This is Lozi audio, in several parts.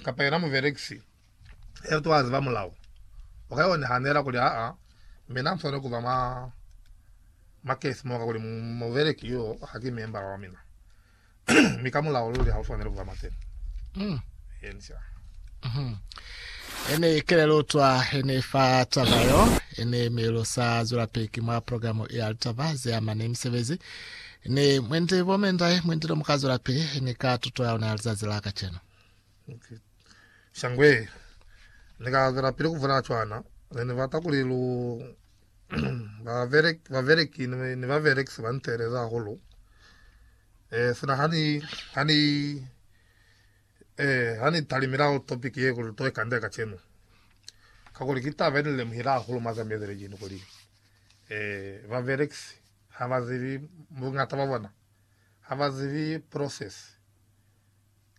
kapa yena mubelekisi yeo to aziba mulao, u ka yo nahanela kuli, Aa, mina muswaneli kuba mwa mwa case mo, kakuli mubeleki yo haki membala wa mina, mi ka mulao luli ha u swaneli kuba mwa teni. Mm. Yenisa. Mm-hmm. Ene kelelo twa ene fa taba yo ene melo sa zwela peki mwa programu ya litaba ze amane misebezi Ni mwendi bo mendai mwendi lo muka zwela pili ni ka tuto ya luna ya lizazi la kacenu. Okay. Shangwe ni ka zwela pili ku vula cwana ne ni bata kuli lu babereki ni baberekisi ba nteleza hahulu eh sina hani hani eh hani talimela topic ye kuli to ikande kacenu kakuli ki taba ni lemuhila hahulu mazamezele jini kuli eh baberekisi Ha ba zibi, bungata bwa bona ha ba zibi process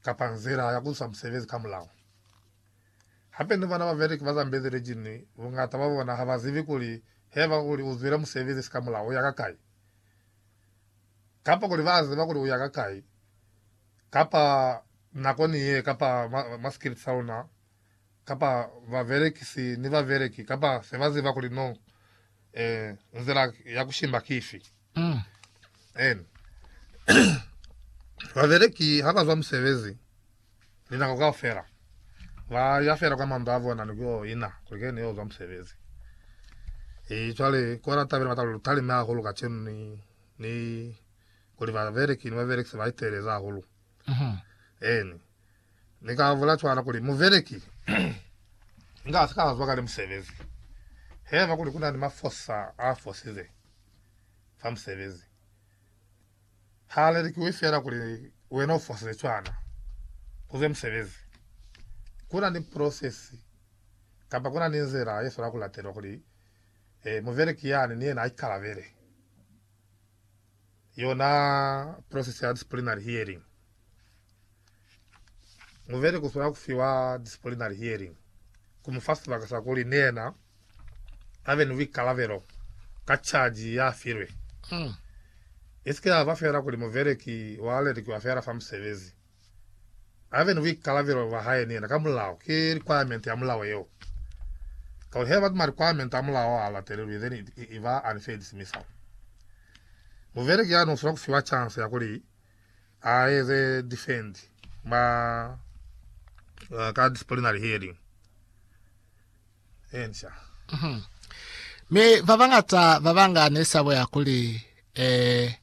kapa nzila ya ku isa musebezi ka mulao. Hape ni bona babereki ba zambezi lijini, bungata bwa bona ha ba zibi kuli heba uli u zwile musebezi si ka mulao u ya ka kai, kapa kuli ba ziba kuli u ya ka kai, kapa nako ni ye, kapa ma, ma scripts a luna. kapa babelekisi ni babeleki kapa se ba ziba kuli no eh, nzila ya ku shimba ki ifi. Mm. Eni. babeleki ha ba zwa musebezi linako kao fela ba ya fela kwa mandu a bona ni kuyo ina kuli kene yo zwa musebezi e cwale kona tabela batalo lutalime hahulu ka chenu ni ni kuli babeleki ni babelekisi ba iteleza hahulu mm -hmm. eni Ni ka bula cwalo kuli, Mubeleki inga si ka zwa kale musebezi. Haiba kuli ku na ni mafosa a fosize fa musebezi, ha lelikiwi fela kuli wena u fosize cwana ku zwe musebezi. Ku na ni prosesi kamba ku na ni nzila ye swanela ku latelwa kuli mubeleki yani ni yena a ikalabele Yona process ya disciplinary hearing, muveli kuswanela kufiwa disciplinary hearing kumufa sibaka sa kuli ni yena abe ni buikalabelo ka charge yafilwe. Isike yaba feela kuli muveli ki walelikiwa feela fa musebezi. a be ni buikalabelo bwa hae ni yena ka mulao. Ki requirement ya mulao yeo. Kakuli heba ki ma requirement a mulao a latelelwi, then it, it, it ba unfair dismissal. Mubeleki ya no sila ku fiwa chance ya kuli a eze defend ma, uh, ka disciplinary hearing. Encia. Mhm. Mi babañata babanga nesabo ya kuli eh,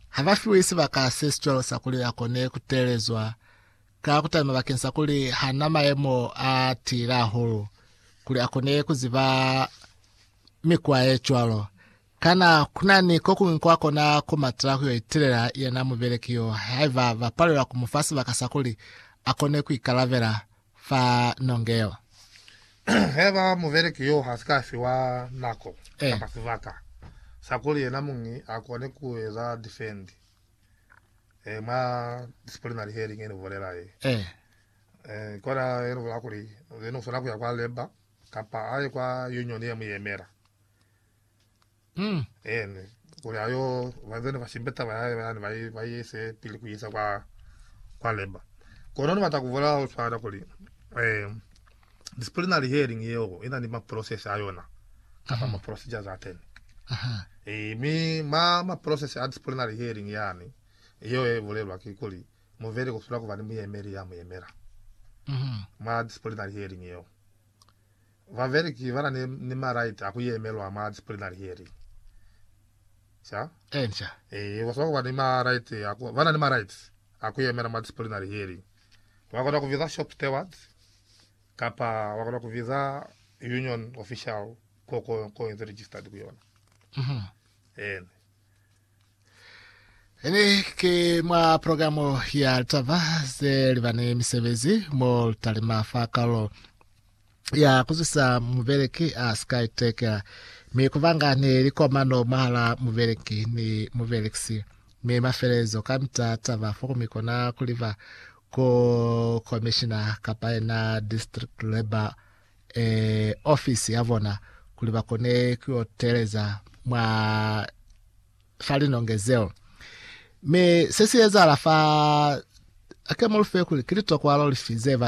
habafiwi sibaka se sicwalo sa kuli akone kuteelezwa ka kutalima bakeng sa kuli hana maemo a tiile ahulu kuli akone kuziba mikwa ye cwalo. Kana kunani kokuñwi kwa kona kumatela kuyo itelela yena mubeleki yo haiba bapalelwa kumufa sibaka sa kuli akone kuikalabela fa nonge yo. Haiba mubeleki yo ha si ka fiwa nako Eh. kapa sibaka sa kuli yena muñi a kone ku eza difendi eh, mwa disciplinary hearing ye ni bulela ye, Eh. eh, ki ona ye ni bulela kuli yena u swanela ku ya kwa labour kapa a ye kwa union ye mu yemela. Umm. Eene, kuli a yo bazeni ba shimbe taba ya hae yani ba i ise pili ku isa kwa, kwa Leba. Kono ni bata ku vula ho swana kuli, eh, disciplinary hearing yeo i na ni ma process a yona, kapa ma procedures a teni. Eh, mi ma, ma process a disciplinary hearing yani, yeo ye bulelwa ki kuli, muveli ku sula ku ba ni muyemeli ya mu yemela, mwa disciplinary hearing yeo. Babeleki bana ni, ni ma right a ku yemelwa mwa disciplinary hearing. Ca? Enca. Ee, ba swanela kuba ni ma right a ku, bana ni ma rights a ku yemela mwa disciplinary hearing. Ba kona ku biza shop stewards, kapa ba kona ku biza union official ko, ko, ko inze registered ku yona. Eena. Ini ki mwa programu ya litaba ze libani misebezi mo litalima fa kalo ya kuzwisa mubeleki a sika itekela mi kubanga ni likomano mwahala mubeleki ni mubelekisi mi mafelelezo kamita taba fo mi kona kuliba ku komishina kapa yena district labor e, ofisi ya bona kuli ba kone ku yo teleza mwa fa linonge zeo. Mi se si ezahala fa ake mulufe kuli ki litokwalo lifi ze ba